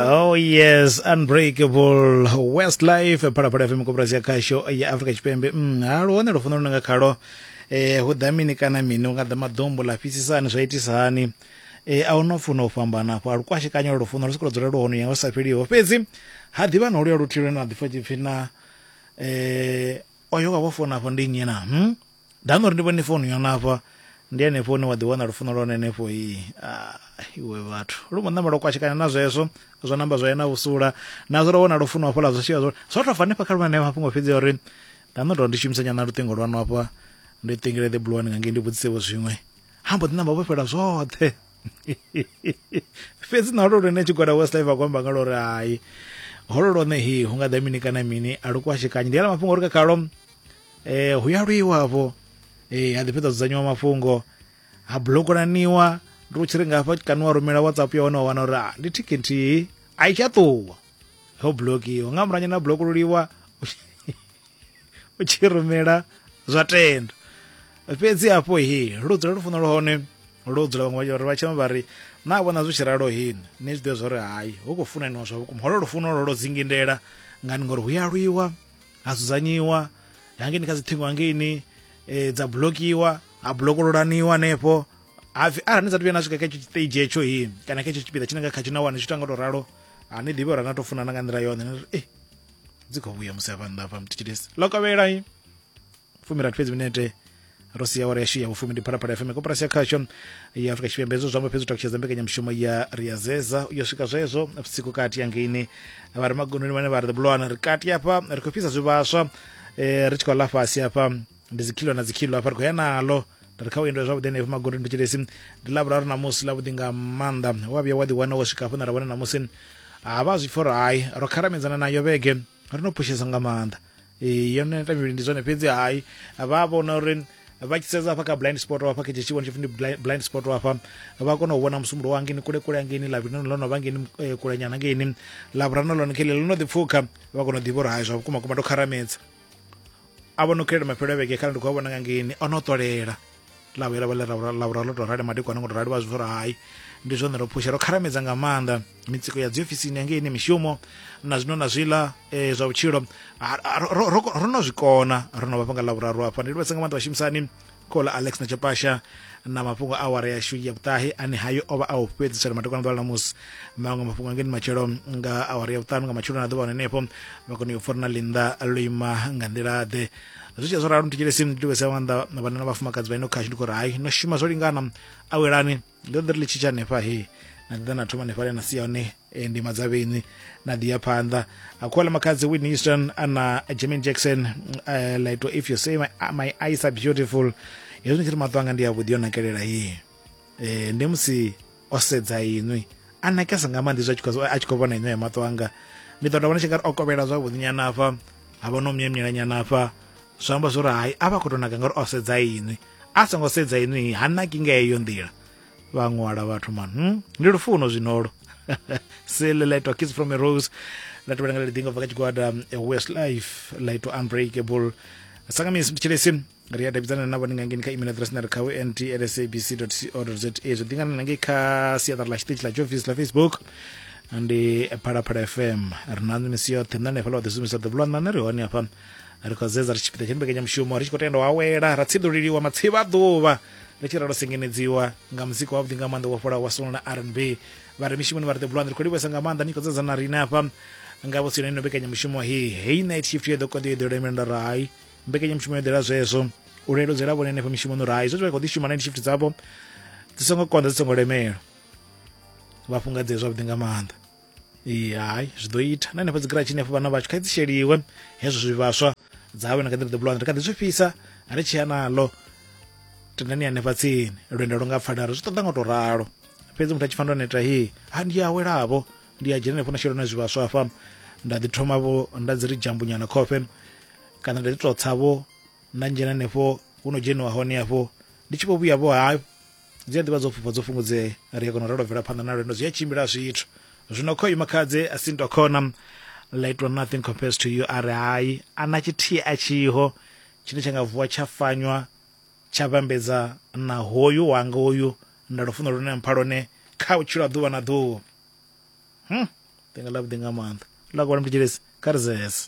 Oh yes, unbreakable Westlife phalaphala FM koporasi ya khasho ya Afrika Tshipembe. Mm, ha luhone lwo funa lunanga khalo. Eh hu ḓa mini kana mini unga ḓa maḓombo la fhisisani zwa itisa hani. Eh a uno funa u fhambana afho a lukwashekanya lwo funa lu sikulo dzula lwo hone ya u sa fheliho. Fhedzi ha ḓivha no luya luthilo na ḓifha tshipfi na eh oyo wa vho fona afho ndi nnyi na? Hmm? Nda nori ndi vhone founu yona hafha ndi henefho hune wa ḓi wana lufuno lwa hone henefho i iwe vhathu lu mbo ṋamba lwa kwashekana na zwezwo zwa namba zwa yena vhusula na zwo ro wana lufuno hafho la zwa shika zwo zwo to fa hanefha kha lwana mafhungo fhedzi uri nda ndo ndi shumisa nyana luṱingo lwanu hafha ndi ṱingile the blue one nga ngei ndi vhudzise vho zwiṅwe ha mbo ḓi namba vho fhela zwoṱhe fhedzi na lwo lune tshigwada west life akwamba nga lwo ri hai holo lwone hi hu nga ḓa mini kana mini a lu kwashekanyi ndi ala mafhungo uri kha khalo eh hu ya lwiwa afho eh ha ḓi fhedza dzudzanyiwa mafhungo ha blokolaniwa ndi u tshi ri nga hafha kana wa rumela whatsapp ya hone wa wana uri ah, ndi thiki nthihi a i tsha ṱuwa ho blokiwa nga muranya na blokoluliwa u tshi rumela zwa tenda fhedzi hafho he lu dzula lu funa lu hone lu dzula vhaṅwe vha vha tshema vha ri na vhona zwi tshi ralo hini ni zwi ḓivha zwa uri hayi hu khou funaniwa zwa vhukuma holo lufuno lwo lwo dzingindela ngani ngori hu ya lwiwa ha dzudzanyiwa hangeni kha dziṱhingo hangeini eh, dza blokiwa ha blokololaniwa hanefho hapfi arali ni sa tu vhuya na swika kha etsho tshitage etsho hi kana kha etsho tshipiḓa tshine nga kha tshina wani tshi tou nga tou ralo ha ni ḓivhi uri na tou funana nga nḓila yone ni ri e dzi khou vhuya musi hafha nnḓa hafha mutshitshilisi ḽo kovhela fumi rathi fhedzi minete ro sia awara yashu ya vhufumi ndi phalaphala fm koporasi ya khasho ya afrika tshipembe hezwo zwamba fhedzi u takutshedza mbekanyamushumo ya riyazeza yo swika zwezwo vhusiku kati ya ngeini vha re magononi vhane vha ri bulwana ri kati hafha ri khou fhisa zwivhaswa eh, ri tshi khou ḽa fhasi hafha ndi dzikhilo na dzikhilo hafha ri khou ya nalo ri kha u endwa zwavhuḓi henefho magondoni thetshelesi ndi lavhuraru namusi ḽavhuḓi nga maanḓa wa vhuya wa ḓiwana wo swika hafho na ra wana namusi ha vha zwi pfhi uri hai ro kharamedzana nayo vhege ri no phushesa nga maanḓa ee yo neta mivhili ndi zwone fhedzi hai vha vhona uri vha tshi sedza hafha kha blind spot hafha kha tshitshivhoni tshipfi ndi bli- blind spot hafha vha kona u vhona musumbulo wa ngeni kule kule angeni lavhili no no vha ngeni eh, kulenyana ngeni lavhurano lone khele ḽo no ḓi pfukha vha kona u ḓivha uri hai zwa vhukuma kuma ndo kharamedza a vho no khelela mafhelo a vhege khala ndi khou a vhona nga ngeni o no ṱolela ḽa vhuya ḽa vha ḽa vhura ḽo tou rali madekwana ngo tou rali vha zwi uri hai ndi zwone ro phusha ro kharamedza nga maanḓa mitsiko ya dziofisini yangei ine mishumo na zwino na zwiḽa um zwa vhutshilo ro no zwi kona ro no vha fhanga ḽa vhuraru hafha ndi livhesa nga maanḓa vhashumisani khola alex na chapasha na mafhungo a awara yashu ya vhuṱahe ane hayo o vha a u fhedzisela madekwana ḓuvha ḽa ṋamusi maṅwe mafhungo angeni matshelo nga awara ya vhuṱanu nga matshelo na ḓuvha hone henefho vha kone u yo pfura na linda lo ima nga nḓila ḓe zwi tshe zwo ralo ndi tshile simu ndi livhese nga maanḓa vhanna na vhafumakadzi vha ino khashu ndi khou ri hai no shuma zwo lingana awelani ndo ḓi ri ḽi tshitsha hanefha he na ḓi ḓa na thoma hanefha le na sia hone eh, ndi madzavheni na ḓi ya phanḓa akhuwela makhadzi whitney houston ana jamin jackson uh, like if you say my, my eyes are beautiful hezwi ndi tshi ri maṱo anga ndi avhuḓi yo nakelela ye eh, ndi musi o sedza inwi a nakesa nga maanḓa izwi a tshi khou vhona inwe ya maṱo anga ni ḓo tovha ni tshi nga ri o kovhela zwavhuḓi nyana afha ha vha no myemyela nyana afha zwi amba zwori hai a vha khou tou naka ngauri o sedza inwi a songo sedza inwi ha naki nga heyo nḓila vha ṅwala vhathu man hmm? ndi lufuno zwinolo silelaitwa kids from a rose la tevhela nga ḽiḓingo bva kha tshigwada west life laitwa unbreakable sangamisi ndi tshilesi ri a davhidzana navho ni nga ngeni kha email address na ri kha wnt at sabc co za zwi ḓingana na ngei kha siaṱari ḽa tshiṱitshi ḽa jofisi ḽa facebook ndi phalaphala fm ri na misi yoṱhe nṋe hanefhaḽa wa ḓi shumisa ḓuvha ḽa nṋe ri hone hafha ri khou zedza ri tshipiḓa tsha mbekanyamushumo ri tshi khou tenda u awela ra tsiḓuliliwa matsivha a ḓuvha ri tshi ralo sengenedziwa nga muzika wavhuḓi nga maanḓa wa fholaho wa sono na r n b vha re mishumoni vha re ḓebulwani ri khou livhesa nga maanḓa ni khou dzedza na riṋe hafha nga vhutsino ino mbekanyamushumo he hei night shift yo ḓo konḓi yo ḓo lemela nda ri hai mbekanyamushumo yo ḓela zwezwo u leludzela vhone henefho mishumoni uri hai zwe vha khou ḓi shuma na shift dzavho dzi songo konḓa dzi songo lemela vha fhungadzee zwavhuḓi nga maanḓa hai zwi ḓo ita na henefho dzigiratshi henefho vhana vhathu kha dzi sheliwe hezwo zwivhaswa dzawe na kha ḓi ḓo bulwana ri kha ḓi zwi fhisa ri tshi ya naḽo tendani hanefha tsini lwendo lu nga pfala ri zwi ṱoḓa nga u tou ralo fhedzi muthu a tshi pfa ndo neta hi ha ndi awelavho ndi a dzhena henefho na shela na zwivhaswa hafha nda ḓi thoma vho nda dzi ri jambunyana khofhe kana nda ḓi tou tsa vho nda dzhena henefho hu no dzheniwa hone hafho ndi tshi vho vhuya vho ha dzi a ḓivha dzo fhufha dzo fhungudzea ri a kona u ralo bvela phanḓa na lwendo zwi a tshimbila zwithu zwino kho ima khadze a si nto khona laitwa nothing compares to you a ri hai a na tshithihi a tshiho tshine tsha nga vuwa tsha fanywa tsha vhambedza na hoyu wanga hoyu nda lufuno lune mpha lone kha vhutshilo ha ḓuvha na ḓuvha hmm. ḓinga ḽa vhuḓi nga maanḓa ḽa kola mtidzhelesi kha ri zese